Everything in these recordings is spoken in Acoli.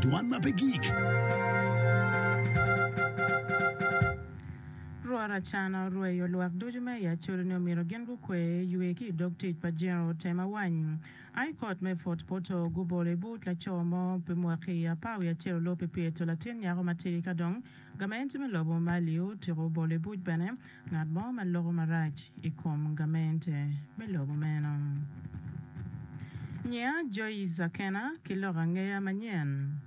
Dwan ma pe gik. Rwot Achan orweyo lwak ducu me i Acholi ni omyero gin gukwe ywe ki i dog tic pa General Tema Wany. I Kot me Fort Portal gubolo i but laco mo pi mwaki apar wiye acel olor pi pyeto latin nyako matir ka dong Gamente me lobo ma alio otyeko bolo i buc bene ngat mo ma loko marac i kom gamente me lobo meno. Nyinga Joyce Akena ki lok angeya manyen.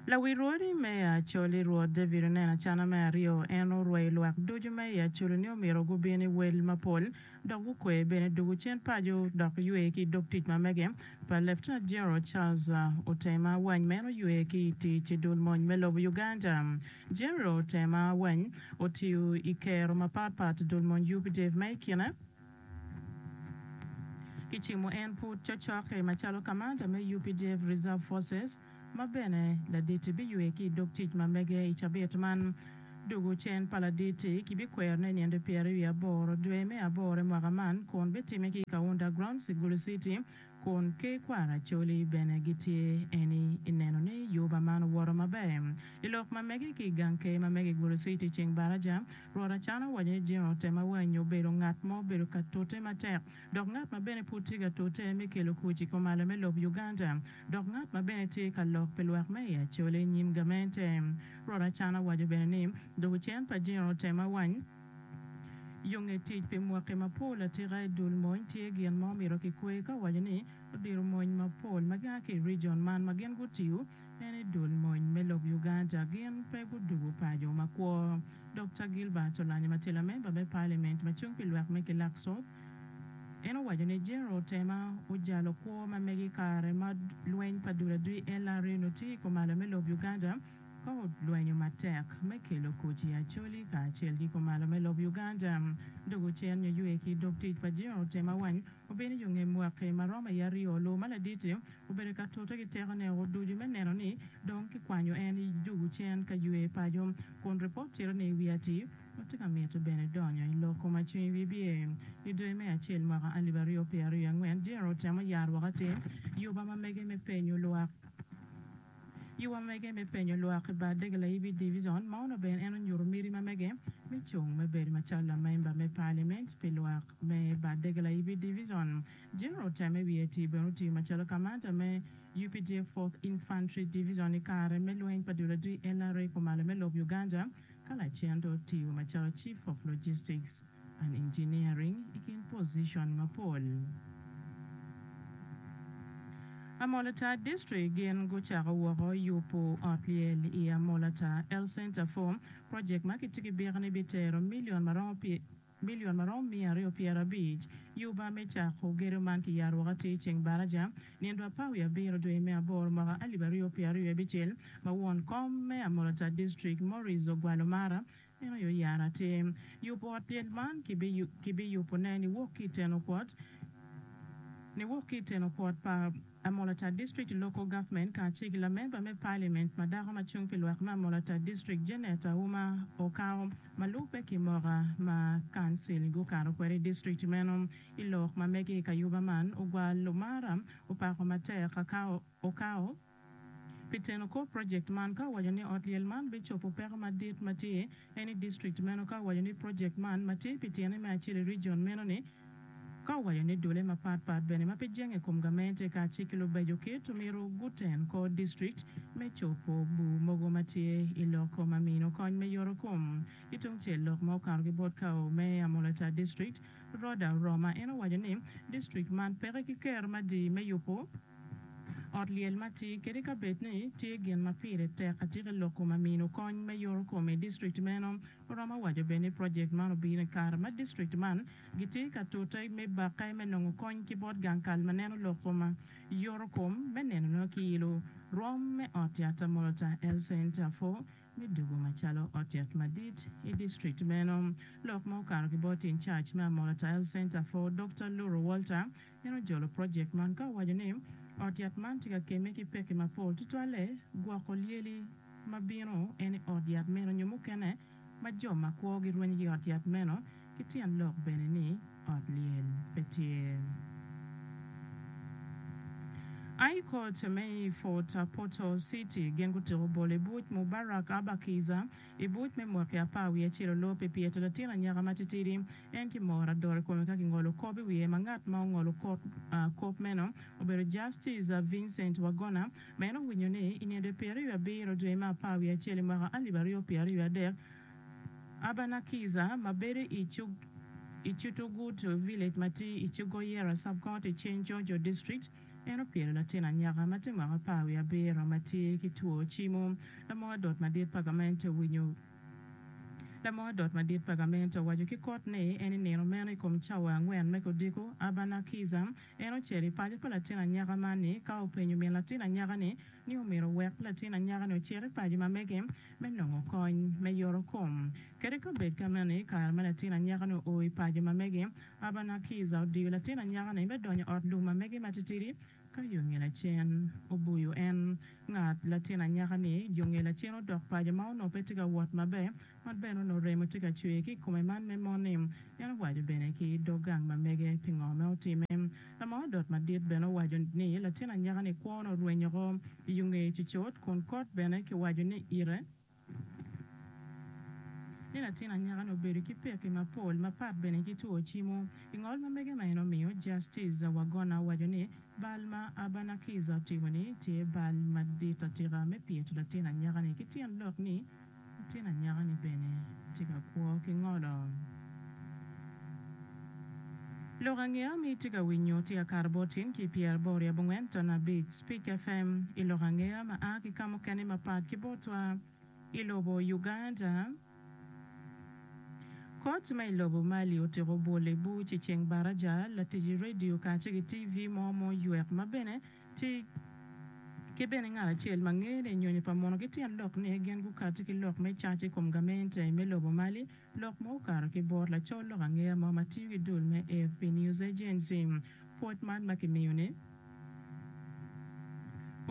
Lawil rwodi me i Acholi Rwot David oneno acana me aryo, en orweyo lwak ducu me i Acholi ni omyero gubin i wel mapol, dok gukwe bene dwogo cen paco dok ywe ki dog tic ma mege pa Lieutenant General Charles Otema Awany ma en oywe ki i tic i dul mony me lobo Uganda. General Otema Awany otiyo i kero mapat pat dul mony UPDF ma i kine kicimo en pud cocokke macalo kamanda me UPDF Reserve Forces, ma bene Ladit-ti biywe ki i dog tic ma mege i cabit man. Dugo cen pa Ladit-ti kibikwerone i nino pyeraryo aboro dwe me aboro i mwaka man kun bitimme ki i Kaunda Grounds i Gulu City kun Ker Kwara Acholi bene gitye eni i neno ni yuba man owoto maber i lok ma mege ki i gang Ker ma mege i Gulu City i ceng baraja. Rwot Achan owaco ni General Temawanyi obedo ngat ma obedo ka tute matek dok ngat ma bene pud tye ka tute me kelo kuc i komalo me lob Uganda dok ngat ma bene tye ka lok pi lwak me i Acholi i nyim gamente. Rwot Achan awaco bene ni, Doko cen pa jino otem awany yo nge tic pi mwaki mapol atika i dul mony tye gin ma omito kikwer ka owaco ni odiro mony mapol ma gia ki i region man ma gin gutiyo Bene dul mony me lok Uganda gin pe gudugu paco makwo. Dokta Gilbert Olanyi ma tye lamemba me Paliament ma cung pi lwak me kilak sop, en owaco ni General Tema ojalo kwo ma mege i kare ma lweny pa dul adwi LRA onongo tye i komalo me lob Uganda ka olwenyo matek me kelo koti Acholi kacel ki komalo me lob Uganda dok ocenyo ywe ki dog tic pa General Tema wany Obino i yo nge mwaki ma romo i aryo. Lobo ma ladit-ti obedo ka tute ki tekone woko ducu me neno ni dong kikwanyo en i jugu cen ka ywe paco, kun ripot cito ni i wi atir, watye ka mito bene donyo i lok koma cwiny wibye. I dwe me acel mwaka alip aryo pyeraryo i angwen, General otemo yaro woko atir yuba ma mege me penyo lwak. I wamege me penyo lwak i bar dege layibi divison ma onongo bene en onyuto miti ma mege me cung me bedo macalo lamemba me paliament pi lwak me bar dege layibi divison, General Teme Wiety bene otiyo macalo kamanda me updf Fourth Infantry Divison i kare me lweny pa dul adii NRA kumalo me lob Uganda ka lacen dong otiyo macalo Chief of Logistics. and Engineering i kin pozicon mapol. Amolata District gin gucako woko yubo ot lyel i Amolata Health Centre for project ma kitye ki byek ni bitero milion ma romo milion ma romo miya aryo pyera abic. Yuba me cako gedo man kiyaro woko atir ceng baraja nino dwa par wiye abiro dwe me aboro mwaka alip aryo pyera aryo abicel ma won kom me Amolata District Maurice Ogwalo Mara Meno aye oyaro atir. Yubo ot lyel man kibiyubone niwok ki i Tenokwot, niwok ki i Tenokwot pa Amolatar District Local Government kacel ki lamemba me Parliament ma dako ma cung pi lwak me Amolatar District Janet Auma Okao ma lubbe ki moka ma Council gukato kwede i District meno. I lok ma mege i kayuba man, ogwal Lumara opako matek Okao, Pi teno kor project man ka owaco ni ot lyel man bicopo peko madit ma tye en i district meno ka owaco ni project man ma tye pi tyene me acel i region meno ni ka owaco ni dole mapat pat bene ma pe jenge kom gamente ka ci ki lubeco kit omyero guten kor district me copo bu mogo ma tye i lok ko ma mino kony me yoro kom ki tung cel lok ma okato ki bot kao me Amolatar district Rhoda Roma en owaco ni district man peke ki ker madi me yupo Ot lyel ma tye kadi ka bed ni tye gin ma pire tek atika i lok-ku ma mino kony me yoro kom i dictrict meno. Oromo waco bene ni project man obino i kare ma dictrict man gitye ka tute me bakke me nongo kony ki bot gang kal ma neno lok-ku ma yoro kom me neno nongo ki ilo rwom me ot yat Molta Health Centre for me dugu macalo ot yat madit i dictrict meno. Lok ma okato ki bot in charge me Amolata Health Centre for Dokta Luro Walter En ojolo projekt man ka owaco ni, Ot yat man tye ka kemme ki pekki mapol, tutwalle gwoko lyeli ma bino en i ot yat meno nyo mukene ma jo ma kwogi rwenyo ki i ot yat meno, ki tyen lok bene ni ot lyel pe tye. High Court me i Fort Portal City gin gutuko bolo i buc Mubarak Aba Kiiza, I buc me mwaki apar wiye acel olor pi pyeto latin anyaka matitidi. En ki moro adoro i kome ka kingolo kop i wiye ma ngat ma ongolo kop kop meno obedo Justice Vincent Wagona ma en owinyo ni i ninde pyer wiye abiro dwe me apar wiye acel i mwaka alip aryo pyer aryo adek Abana Kiza ma bedo i Cutugutu Village ma tye i Cugoyera Sub-County, Cenco Jo District. En opyelo latin anyaka ma tye mwaka apar wiye abiro ma tye ki two cimo. Lamok adot madit pa gamente owinyo Lamok adot madit pa gamente owaco ki kot ni en i nino meno i kom cawa angwen me kodiko, Abana Kiza, en ocel i paco pa latin anyaka man ni ka openyo min latin anyaka ni ni omyero owek latin anyaka ni ocit i paco ma mege me nongo kony me yoro kom. Kadi ka obed ka meno i kare ma latin anyaka ni oo i paco ma mege, Abanakiza odiyo latin anyaka-ni me donyo ot lum ma mege matitidi ka yo ngelacen. Oboyo en, ngat, latin anyaka-ni yo ngelacen odok paco ma onongo pe tye ka wot maber, ma bene onongo remo tye ka cwer ki i kome man me moni. En owaco bene ki dog gang ma mege pingo me otime. Lamaa odot madit bene owaco ni latin anyaka-ni kwo onongo rwenyo oko i yo ngeye cucut kun kot bene kiwaco ni ite, ni latin anyaka-ni obedo ki pekki mapol mapat bene ki two cimo. I ngol ma mege ma en omiyo, Justice Wagona owaco ni, Bal ma Abanakiza otimo-ni tye bal madit atika me pyeto latin anyaka-ni ki tyen lok ni latin anyaka-ni bene tye ka kwo ki ngolo. Lok angeya ma itye ka winyo tye Akato Botin ki Pierre Bori abongwen ton abic, Speak FM, i lok angeya ma a ki ka mukene mapat ki botwa i lobo Uganda. Kot ma i lobo Mali otiko bwol i buc i ceng baraja. Latic redio kace ki TV mo ma oywek ma bene tye ki bene ngat acel ma ngene nyonyo pa mono ki tyen lok ni gin gukati ki lok me caca i kom gamente me lobo Mali. Lok ma okato ki bot lacol lok angeya mo ma tiyo ki dul me AFP News Agency, pwod man ma kimiyo ni,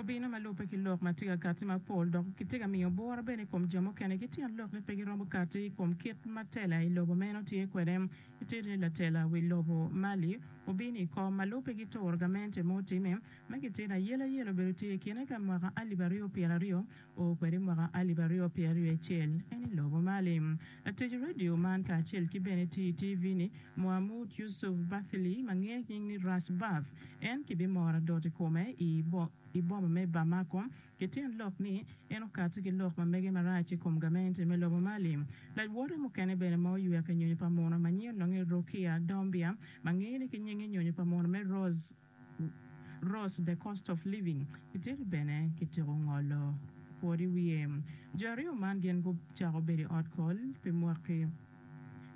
Obino ma lubbe ki lok ma tye ka katti mapol dok kitye ka miyo bworo bene i kom jo mukene ki tyen lok ni pe giromo katti i kom kit ma tela i lobo meno tye kwede. Itito ni latela wi lobo Mali obino i kom ma lubbe ki turo gamente ma otime ma kitito ayelayela obedo tye i kine ka mwaka alip aryo pyera aryo Oo kwede i mwaka alip aryo pyera ryo acel en i lobo mali. Latic radio man kacel ki bene ti i TV ni Muhamood Yusuf Bathily ma nge nying ni Ras Bath en ki bi moro adot i kome i i boma me Bamako ki tyen lok ni en okati ki lok ma mege marac i kom gamente me lobo mali. Lajwote mukene bene ma oyueke nyonyo pa muno ma nyi ononge Rokia Dombia ma nge ni ki nyinge nyonyo pa muno me Rose Ross, The Cost of Living, Iteri bene kityeko ngolo kwor i wiye. Jo aryo man gin gucako bedo i ot kol pi mwaki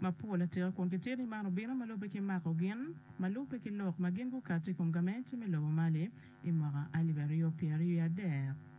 mapol atika kun kitye ni man obino ma lubbe ki mako gin ma lubbe ki lok ma gin gukati i kom gamente me lobo Mali i mwaka alip aryo pyeraryo adek.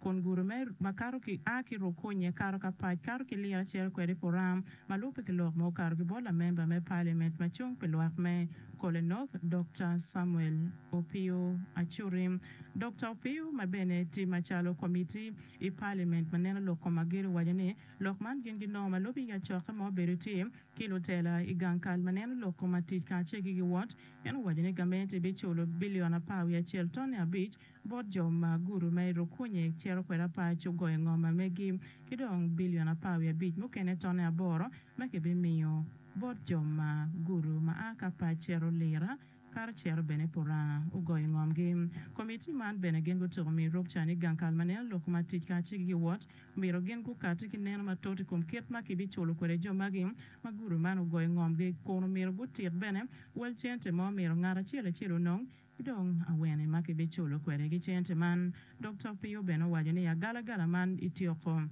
kun gure me ma kato ki a ki Rukunye kato ka pac kato ki Lira ciro kwede Puram ma lubbe ki lok ma okato ki bot lamemba me Paliament ma cung pi lwak me Kole North Dokta Samuel Opio Acuri. Dokta Opio ma bene ti macalo Komitti i Paliament ma neno lok kom agir owaco ni lok man gin ginongo ma lubbe i acokke ma obedo tye ki lutela i gang kal ma neno lok kom atic kacel ki giwot. En owaco ni gamente biculo bilion apar wiye acel tone abic bot jo ma guru ma iruk kunye ciro kwede apar cogoye ngom ma megi, ki dong bilion apar wiye abic mukene tone aboro ma kibimiyo bot jo ma guru ma a ka apar ciro lira kato ciro bene pi oranga ogoye ngomgi. Komitti man bene gin gutyeko miyo iruk ca ni gang kal ma neno lok ma tic kacel ki giwot omyero gin gukatti ki neno matut i kom kit ma kibiculo kwede jo magi ma guru man ogoye ngomgi kun omyero gutit bene wel cente ma omyero ngat acel acel onong Ki dong, awene ma kibiculo kwede ki cente man? Dokta Opio bene owaco ni, Agalagala man ityeko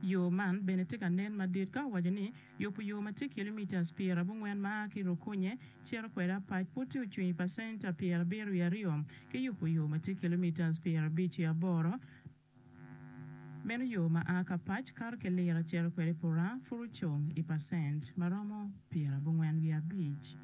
yo man bene tye ka nen madit ka owaco ni, Yubo yo ma tye kilomitas pyer abongwen ma a ki Rukunye cito kwede Apac pud tye ocwiny pa centa pyer abiro wiye aryo ki yubo yo ma tye kilomitas pyer abic wiye aboro, meno yo ma a ki Apac kato ki Lira cito kwede Pura pud ocung i pacent ma romo pyer abongwen wiye abic.